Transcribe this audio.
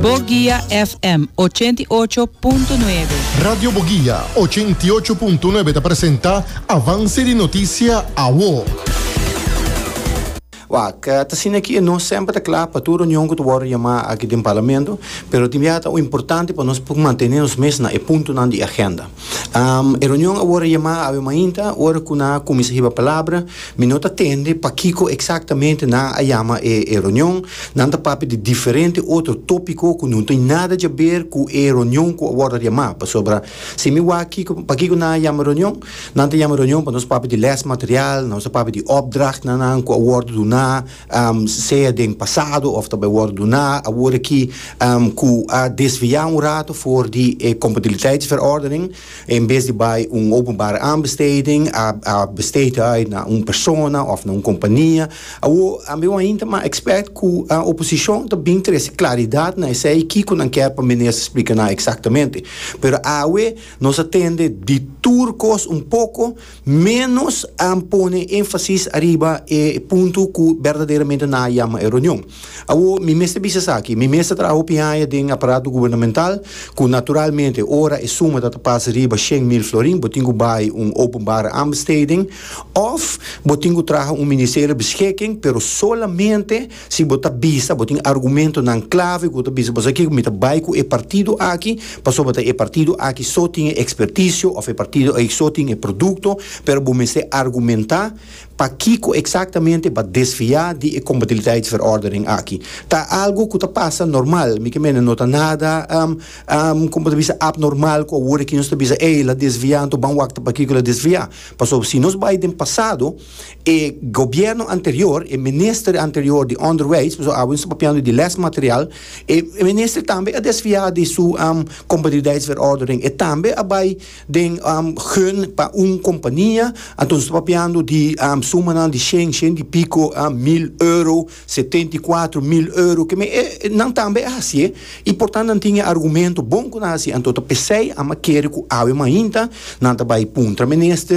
Boguia FM ochenta i ocho punto nuebe. Radio Boguia ochenta i ocho punto nuebe ta presenta Avance di Noticia Awo. Wak, ta asina aki e nos semper ta kla pa tur reunion ku ta wòrdu yamá aki den Parlamento, pero tin biaha ta importante pa nos por mantene nos mes na e puntonan di agenda. Am, e reunion awor a yama awe mainta, ora cu nan a cuminsa hiba palabra, mi no ta tende pakico exactamente nan a yama e e reunion, nan ta papia di diferente otro topico cu no tin nada djaber cu e reunion cu a wordo yama, pasobra si mi wak kico pakico nan a yama e reunion, nan ta yama e reunion pa nos papia di les material, nos ta papia di opdrachtnan nan cu a wordo duna, sea den pasado of ta bai wòrdu duná awor aki ku a desviá un ratu for di e kompatibiliteitsverordening, en bes di bai un openbare aanbesteding a a besteed uit na un persona of na un kompania. Awor a mi wou hinta mas ekspèrt ku oposishon ta bin trese klaridat na esei kiko nan kèr pa minister splika nan eksaktamente. Pero awe nos a tende di tur kos un poko. Ménos a pone énfasis ariba e punto ku berdaderamente nan a yama e reunion. Awor, mi mester bisa esaki, mi mes ta traha hopi haña den aparato gubernamental, ku naturalmente ora e suma ta ta pas riba shen mil florin, bo tin ku bai un openbare aanbesteding òf bo tin ku traha un ministerio beschikking, pero solamente Si bo ta bisa bo tin argumentonan klave ku ta bisa bo sa kiko mi ta bai ku e partido aki pasobra e partido aki so tin e ekspertisio òf e partido aki so tin e produkto pero bo mester argumentá pakiko eksaktamente bo a desviá di e kompatibiliteitsverordening aki. Ta algu ku ta pasa normal mi ke mene no ta nada kòmo ta bisa abnormal ku awor aki nos ta bisa ey el a desviá anto ban wak ta pakiko el a desviá pasobra si nos bai den pasado E gobierno anterior, e minister anterior di onderwijs, pasobra awe nos ta papiando di lesmaterial, e minister tambe a desfia di su competitiviteitsverordening, e tambe a bai den gun pa un compania, anto nos ta papiando di sumanan di shen, shen di pico mil euro, setenta y cuatro mil euro, keme e nan tambe a hacié y por tanto nan tin e argumento bon cu nan a hacié, anto ta pesey a kere cu awe mainta nan ta bai puntra minister.